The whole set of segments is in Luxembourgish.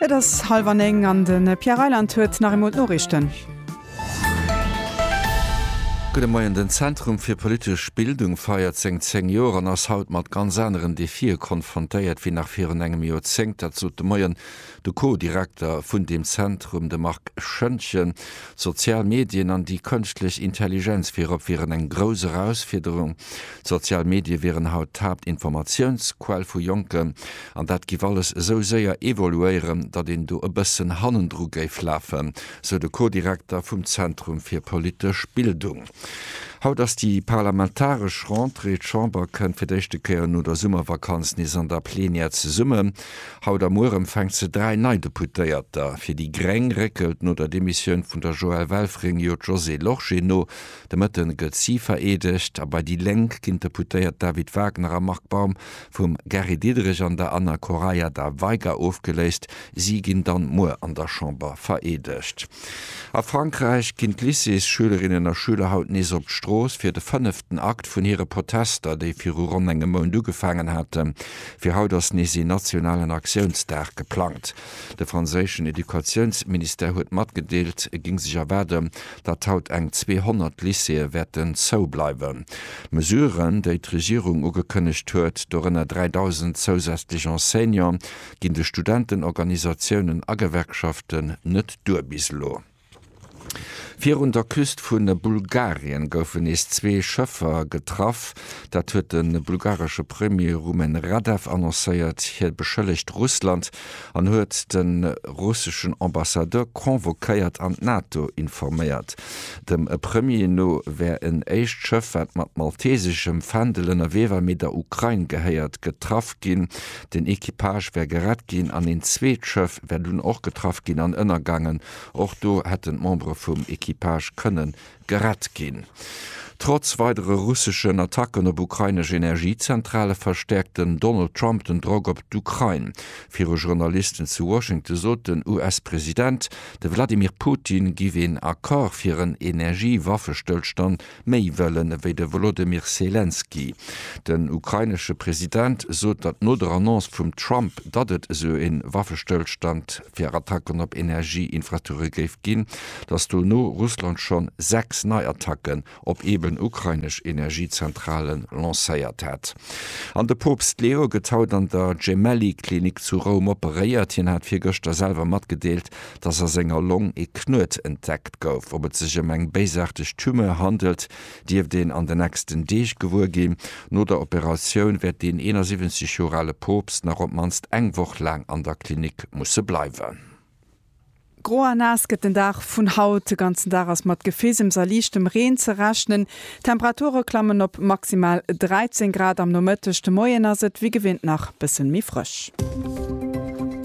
Et ass hallwer 9 an de Pierre Reyland huet nach eemol d'Noriichten. Gudde Moien, Den Zentrum fir politesch Bildung feiert seng 10 Joer an ass haut mat ganz aneren Defie konfrontéiert wéi nach virun engem Joerzéngt. Dat sot de Moien de Co-Direkter vun deem Zentrum, de Marc Schoentgen. D'sozial Medien an déi kënschtlech Intelligenz virop wieren eng grouss Erausfiederung. D'sozial Medie wieren haut d'Haaptinformatiounsquell vu Jonken, an dat giff alles esou séier evoluéieren, datt een do e bëssen hannendru géif lafen, sou de Co-Direkter vum Zentrum fir politesch Bildung. Haut ass déi parlamentaresch Rentrée. D'Chamber kënnt fir d'éischte Kéier no der Summervakanz nees an der Plenière zesummen. Haut a muer empfänkt se dräi nei Deputéierter. Fir déi gréng réckelt no der Demissioun vun der Joëlle Welfring jo d'Josée Lorsché no. De Mëtte gëtt si vereedegt a bei déi Lénk ginn d'Deputéiert David Wagner a Marc Baum vum Gary Diderich an der Anna Correia da Veiga ofgeléist. Si ginn dann muer an der Chamber vereedegt. A Frankräich ginn d'Lycéesschülerinnen a schüler haut nees op d'Strooss fir de fënneften Akt vun hire Protester, déi viru ronn engem Mount ugefaangen haten. Fir haut ass nees een nationalen Aktiounsdag geplangt. De franséischen Educatiounsministère huet matgedeelt, et géing sech erwaarden, datt haut eng 200 Lycéeë wäerten zou bleiwen. D'Mesuren, déi d'Regierung ugekënnegt huet, dorënner 3.000 zousätzlech Enseignante, ginn de Studentenorganisatiounen a Gewerkschaften net duer bis elo. Virun der Küst vu Bulgarien goufen nees zwee Schëffer getraff. Dat huet de bulgaresche Premier Rumen Radev annoncéiert. Hie beschëllegt Russland an huet de russeschen Ambassadeur convoquéiert an d'NATO informéiert. Dem Premier no wär en éischt Schëff, wat mat malteseschem Fändel ënnerwee war, mee der Ukrain gehéiert, getraff ginn. Den Equipage wär gerett ginn an een zweet Schëff wär dunn och getraff ginn an ënnergaangen. Och do hätten d'Membere vum Equipage kënne gerett ginn. Trotz weidere russeschen Attacken op ukrainesch Energiezentrale verstäerkt den Donald Trump den Drock op d'Ukrain. Viru Journalisten zu Washington sot den US-President, de Wladimir Putin giff een Accord fir en Energiewaffestëllstand méi wëllen ewéi de Wolodymyr Selenskyj. Den ukrainesche President sot, datt no der Annonce vum Trump, datt et esou ee Waffestëllstand fir Attacken op Energieinfrastrukture géif ginn, datt dono Russland schonn 6 nei Attacken op eeben ukrainesch Energiezentrale lancéiert hätt. An de Poopst Leo gëtt haut an der Gemelli-Klinik zu Roum operéiert. Hien hat virgëschter selwer matgedeelt, dass a senger Long ee Knuet entdeckt gouf. Ob et sech ëm eng béisaarteg Tumeur handelt, dierft een an den nächsten Deeg gewuer ginn. No der Operatioun wäert den 71 Joer ale Poopst nach op d'mannst eng Woch laang an der Klinik musse bleiwen. Gro a naass gëtt den Dag vun haut. De ganzen Dag ass mat Gefeesems a liichtem Reen ze rechnen. D'Temperature klammen op maximal 13 Grad am Nomëtteg, de Moien ass et wéi gewinnt nach bëssen méi frësch.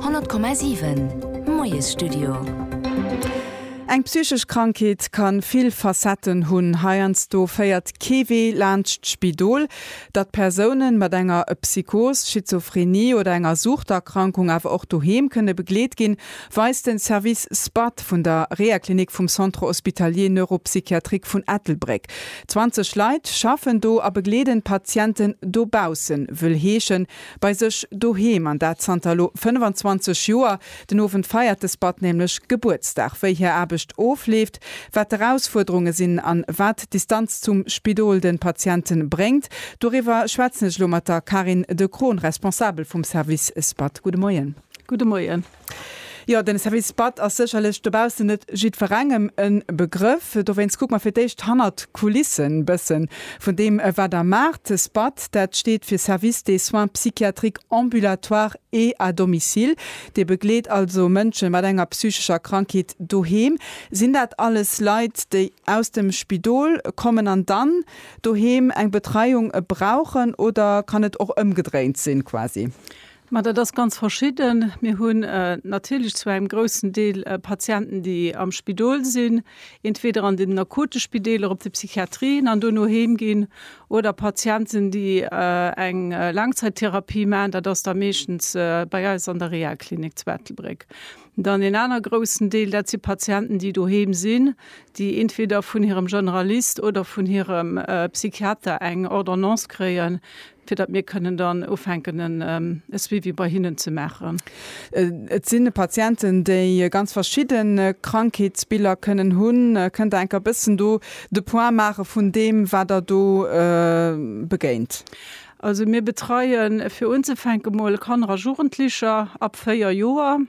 100,7 Moiesstudio. Eng psychesch Krankheet kann vill Facetten hunn. Heiansdo féiert kee Wee laanscht d'Spidol. Datt Persounen mat enger Psychos, Schizophrenie oder enger Suchterkrankung awer och doheem kënne begleet ginn, weist den Service SPAD vun der Rehaklinik vum Centre Hospitalier Neuropsychiatrique vun Ettelbréck. 20 Leit schaffen do a begleeden d'Patienten dobaussen, wëll heeschen, bei sech doheem, an dat zanter elo 25 Joer. Den Owend feiert de SPAD nämlech Gebuertsdag. Wéi hir Aarbecht ofleeft, wat d'Erausfuerderunge sinn an wat d'Distanz zum Spidol den Patienten bréngt, doriwwer schwätzen ech elo mat der Carine De Croon, Responsabel vum Service SPAD. Gudde Moien. Gudde Moien. Jo, den Service Bad ass sécherlech dobaussen net jiddwerengem e Begrëff. Dowéinst kucke mer fir d'éischt hannert d'Kulissen e bëssen vun deem, wat der maacht. SBAD, dat steet fir Service des soins psychiatriques ambulatoires et à domicile. Dir begleet also Mënsche mat enger psychescher Krankheet doheem. Sinn dat alles Leit, déi aus dem Spidol kommen an dann doheem eng Betreiung brauchen oder kann et och ëmgedréint sinn quasi? Ma dat ass ganz verschidden. Mir hunn natierlech zu engem groussen Deel Patienten, déi am Spidol sinn, entweder an den akute Spideeler, op de Psychiatrien an duerno heem ginn, oder Patienten, déi eng Laangzaittherapie maachen. Dat ass da meeschtens bei eis an der Rehaklinik zu Ettelbréck. Dann een aner groussen Deel, dat si Patienten, déi doheem sinn, déi entweder vun hirem Generalist oder vun hirem Psychiater eng Ordonnance kréien, fir datt mir kënnen dann ufänken en e Suivi bei hinnen ze maachen. Et sinn Patienten, déi ganz verschidde Krankheetsbiller kënnen hunn. Kënnt Der enker e bëssen do de Point maache vun deem, wat Der do begéint? Also mir betreie fir unzefänken emol Kanner a Jugendlecher ab 4 Joer.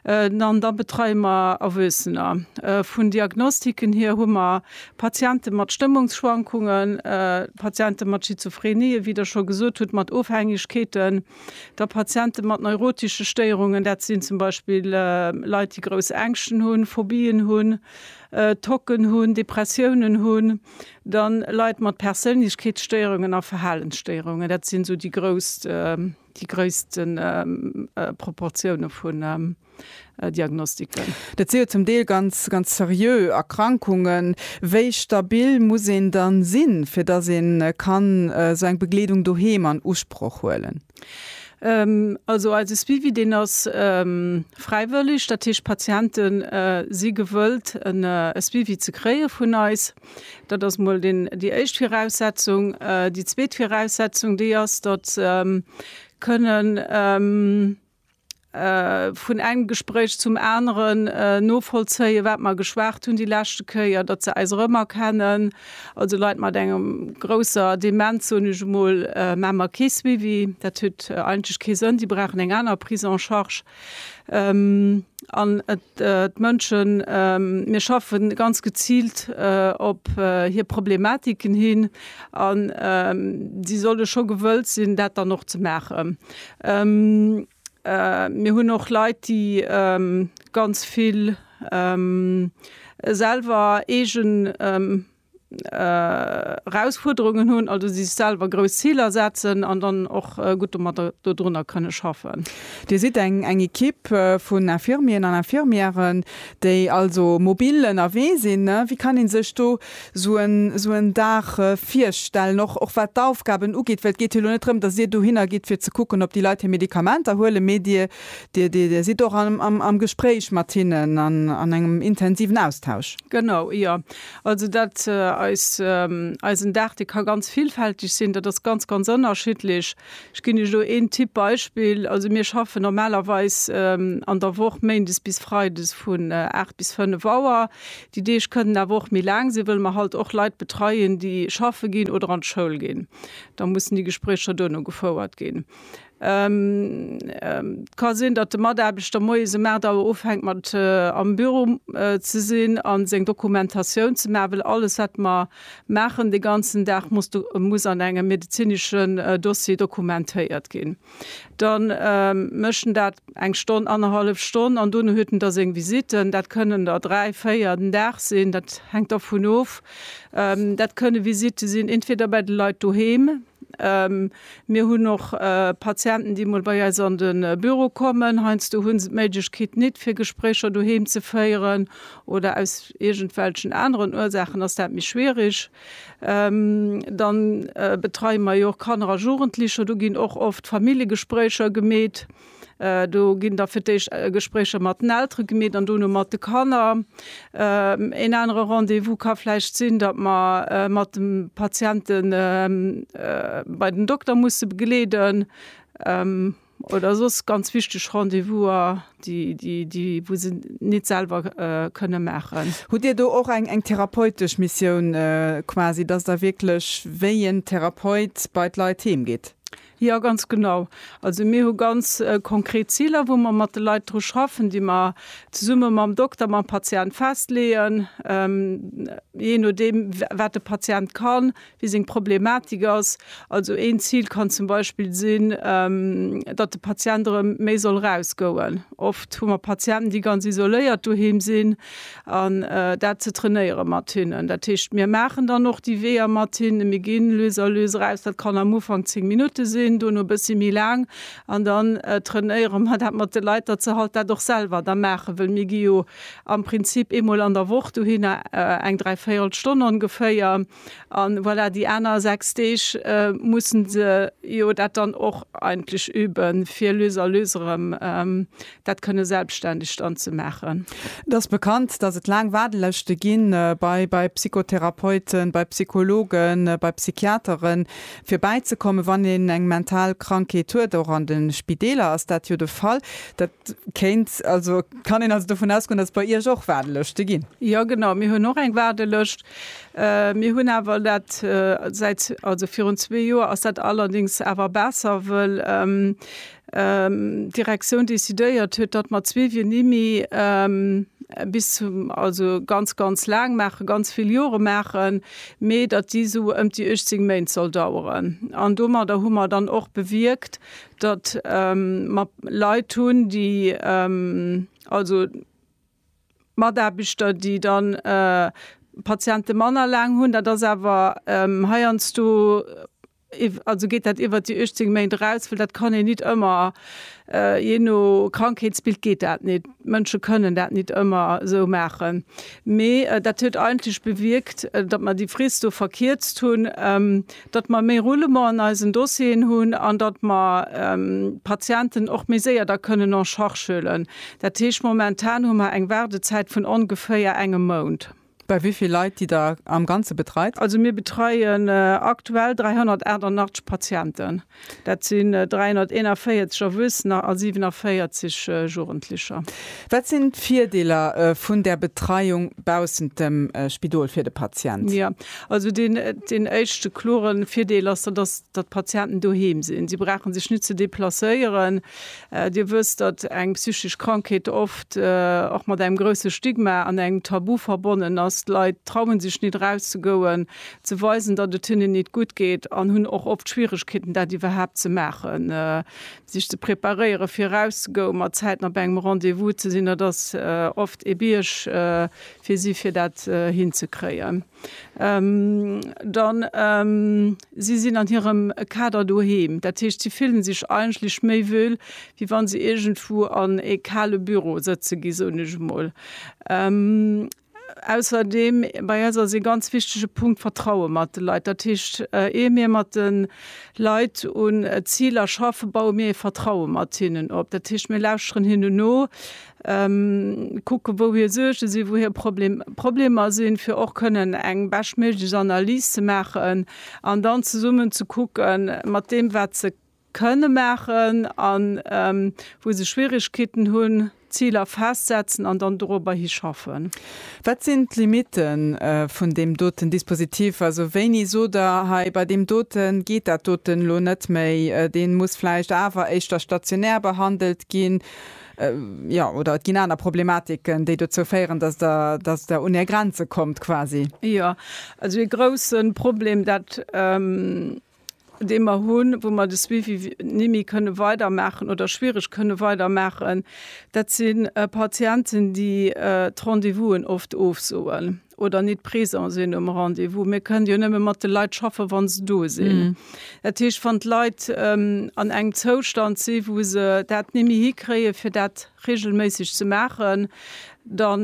An da betreie mer Erwuessener. Vun Diagnostiken hier hu mer Patiente mat Stëmmungsschwankungen, Patiente mat Schizophrenie, wéi Der scho gesot hutt, mat Ofhängegkeeten, da Patiente mat neurotesche Stéierungen, dat sinn zum Beispill Leit, déi grouss Ängschten hunn, Phobien hunn, Tocken hunn, Depressiounen hunn, dann Leit mat Perséinlechkeetsstéierungen a Verhalensstéierungen. Dat sinn esou déi grouss. Déi gréisste Proportioune vun Diagnostiken. Dat si jo zum Deel ganz, ganz seriö Erkrankungen. Wéi stabil muss een dann sinn, fir dass een kann esou eng Begleedung doheem an Usproch huelen? Also eise Suivi, deen ass fräiwëlleg. Dat heescht, d'Patienten si gewëllt, e Suivi ze kréie vun eis. Dat ass emol déi éischt Viraussetzung. Déi zweet Viraussetzung, déi ass, datt kënnen vun engem Gespréich zum aneren novollzéien, wat mer geschwat hunn déi leschte Kéier, datt se eis erëmerkennen. Also Leit mat enger grousser Demenz, soen ech emol, maache mer kee Suivi. Dat huet eigentlech kee Sënn. Déi brauchen eng aner Prise en charge. An d'Mënschen, mir schaffe ganz geziilt op hir Problematiken hin an si solle scho gewëllt sinn, dat dann och ze maachen. Mir hunn och Leit, déi ganz vill selwer eegen Erausfuerderungen hunn, also sech selwer grouss Ziler setzen an dann och gutt domadder dodrunner kënne schaffen. Dir sidd eng eng Ekipp vun Infirmieren an Infirmièren, déi also mobil ënnerwee sinn. Wéi kann ee sech do esou en esou en Dag virstellen, och och wat d'Aufgaben ugeet? Well et geet jo elo net drëm, datt Dir dohinner gitt fir ze kucken, ob déi Leit hir Medikamenter huelen, mee Dir Dir Dir Dir sidd och am am am Gespréich mat hinnen an an engem intensiven Austausch. Genau, jo. Also dat eis, eisen Dag, dee ka ganz villfälteg sinn. Dat ass ganz, ganz ënnerschiddlech. Ech ginn Iech elo een Tipp, Beispill, also mir schaffen normalerweis an der Woch méindes bis freides vun 8 bis 5 Auer. Déi Deeg kënnen awer och méi laang sinn, wëll mer halt och Leit betreien, déi schaffe ginn oder an d'Schoul ginn. Da mussen déi Gespréicher duerno gefouert ginn. Et ka sinn, datt de Mataarbechter moies um 8 Auer ufänkt mat am Büro ze sinn a seng Dokumentatioun ze maachen, well alles, wat mer maachen de ganzen Dag, muss do, muss an engem medezineschen Dossier dokumentéiert ginn. Da mécht en dat eng Stonn, annerhallef Stonn an duerno huet en da seng Visitten. Dat kënnen der dräi, véier den Dag sinn, dat hänkt dervun of. Dat kënne Visitte sinn entweder bei de Leit doheem, Mir hunn och Patienten, déi emol bei eis an de Büro kommen. Heiansdo hu se d'Méiglechkeet nit, fir Gespréicher doheem ze féieren, oder aus iergendwelchen aneren Ursaachen ass dat méi schwierig. Da betreie mer jo och Kanner a Jugendlicher. Do ginn och oft Familljegespréicher gemeet. Do ginn da fir d'éischt Gespréicher mat den Eltere gemeet an dono mat de Kanner. Een anere Rendez-vous ka vläicht sinn, datt mer mat de Patiente bei den Dokter musse begleeden oder soss ganz wichteg Rendez-vouser, déi wou se nit selwer kënne maachen. Hutt Dir do och eng therapeutesch Missioun quasi, datt Der wierklech wéi en Therapeut bei d'Leit heem gitt? Jo, ganz genau. Also mir hu ganz konkret Ziler, wou mer mat de Leit dru schaffen, déi mer zesumme mam Dokter, mam Patient festleeën, jee nodeem, wat de Patient kann, wéi seng Problematik ass. Also een Zil kann zum Beispill sinn, datt de Patient erëm méi soll erausgoen. Oft hu mer Patienten, déi ganz isoléiert doheem sinn. an dat ze trainéiere mat hinnen. Dat heescht, mir maachen dann och déi Weeër mat hinnen, mir ginn lues a lues eraus. Dat kann am Ufank zéng Minutte sinn, duerno e bëssi méi laang an dann trainéiere mer dat mat de Leit, datt se halt dat och selwer da maachen. Well mir gi jo am Prinzip eemol an der Woch dohinner, eng dräivéierel Stonn ongeféier. An voilà, déi aner 6 Deeg mussen se jo dat dann och eigentlech üben, fir lues a lues erëm dat kënne selbstständeg dann ze maachen. Et ass bekannt, dass et laang Waardelëschte ginn, bei bei Psychotherapeuten, bei Psychologen, bei Psychiateren, fir bäizekommen, wann een eng mental Krankheet huet. Och an de Spideeler ass dat jo de Fall. Dat kéint also, kann een also dovun ausgoen, dass et bei Iech och Waardelëschte ginn? Jo, genau. Mir hunn och eng Waardelëscht. Mir hunn awer dat säit, also virun zwee Joer ass dat allerdéngs awer besser, wëll d'Direktioun decidéiert huet, datt mer d'Suivi-nimi bis zum, also ganz, ganz laang maachen, ganz vill Jore maachen, mee datt déi esou ëmt déi 18 Méint soll daueren. An domadder hu mer dann och bewierkt, datt mer Leit hunn, déi also, Mataarbechter, déi da Patiente manner laang hunn, dat ass awer heiansdo, also geet dat iwwert déi 18 Méint eraus, well dat kann een nit ëmmer, jee no Krankheetsbild geet dat nit, d'Mënsche kënnen dat nit ëmmer esou maachen. Mee dat huet eigentlech bewierkt, datt mer déi Frist do verkierzt hunn. datt mer méi Roulement an eisen Dossieren hunn an datt mer d'Patienten och méi séier da kënnen en charge huelen. Dat heescht, momentan hu mer eng Waardezäit vun ongeféier engem Mount. Bei wéi vill Leit, déi Der am Ganze betreit? Also mir betreien aktuell 388 Patienten. Dat sinn 341 Erwuessener a 47 Jugendlecher. Wat sinn d'Virdeeler vun där Betreiung baussent dem Spidol fir de Patient? Jo, also deen éischte klore Virdeel ass, dat ass, datt d'Patienten doheem sinn. Si brauche sech net ze deplacéieren. Dir wësst, datt eng psychesch Krankheet oft och mat engem grousse Stigma an engem Tabu verbonnen ass. D'Leit traue sech net erauszegoen. ze weisen, datt et hinnen nit gutt geet an hunn och oft Schwieregkeeten, dat iwwerhaapt ze maachen, sech ze preparéieren, fir erauszegoen, mat zäitnah bei engem Rendez-vous ze sinn. Dat ass oft ee Bierg fir si, fir dat hinzekréien. Dann, si sinn an hirem Kader doheem, dat heescht, si fillen sech eigentlech méi wuel, wéi wann se iergendwou an ee kale Büro sëtze gi, soen ech emol. Ausserdeem, bei eis ass ee ganz wichtege Punkt d'Vertraue mat de Leit. Dat heescht, ier mir mat de Leit un Ziler schaffen, baue mir ee Vertraue mat hinnen op. Dat heescht, mir lauschteren hinnen no, kucken, wou hir Suerge sinn, wou hir Problemer sinn, fir och kënnen eng beschtméiglech Analys ze maachen an dann zesummen ze kucken, mat deem, wat se kënne maachen an wou se Schwierigkeeten hunn, Ziler festsetzen an dann dorobber hi schaffen. Wat sinn d'Limite vun deem doten Dispositif? Also wéini sot Der, hei bei deem doten geet dat doten elo net méi, dee muss vläicht awer éischter stationär behandelt ginn, jo, oder et ginn aner Problematiken, déi dozou féieren, dass Der, dass Der un Är Grenze kommt quasi? Jo, also ee grousse Problem, dat dee mer hunn, wou mer de Suivi nimmi kënne weidermaachen oder schwierig kënne weidermaachen, dat si Patienten, déi d'Rendez-vousen oft ofsoen oder nit présent sinn um Rendez-vous. Mir kënnen jo nëmme mat de Leit schaffen, wa se do sinn. Dat heescht, wann d'Leit an engem Zoustand si wou se dat nimmi hikréien, fir dat regelméisseg ze maachen, da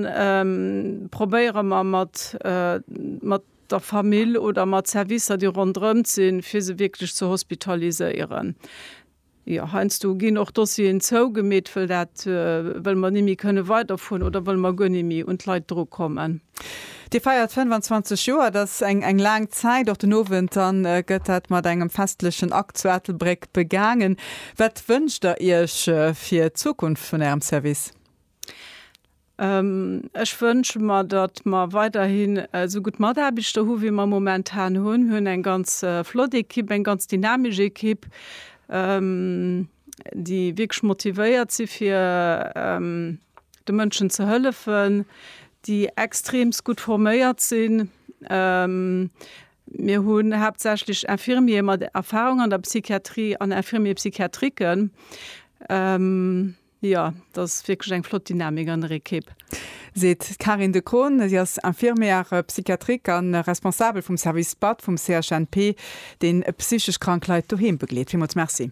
probéiere mer mat der Famill oder mat Servicer, déi ronderëmt sinn, fir se wierklech ze hospitaliséieren. Jo, heiansdo ginn och Dossieren zougemeet, wëll dat, wëll mer ni méi kënne weiderfueren oder wëll mer guer ni méi un d'Leit drukommen. Dir feiert 25 Joer, dat ass eng, eng laang Zäit. Och den Owend dann gëtt dat mat engem festlechen Akt zu Ettelbréck begaangen. Wat wënscht Der Iech fir d'Zukunft vun Ärem Service? Ech wënsche mer, datt mer weiderhin esou gutt Mataarbechter hu wéi mer momentan hunn. Mir hunn eng ganz flott Ekipp, eng ganz dynamesch Ekipp, déi wierklech motivéiert si fir de Mënschen ze hëllefen, déi extreemst gutt forméiert sinn. Mir hunn haaptsächlech Infirmiere mat Erfarung an der Psychiatrie an Infirmiers psychiatriques. Jo, et ass wierklech eng flott Dynamik an der Ekipp. Seet d'Karin De Coon. Si ass Infirmière psychiatrique a Responsabel vum Service Bad vum CHNP, dee psychesch krank Leit doheem begleet. Villmools Merci.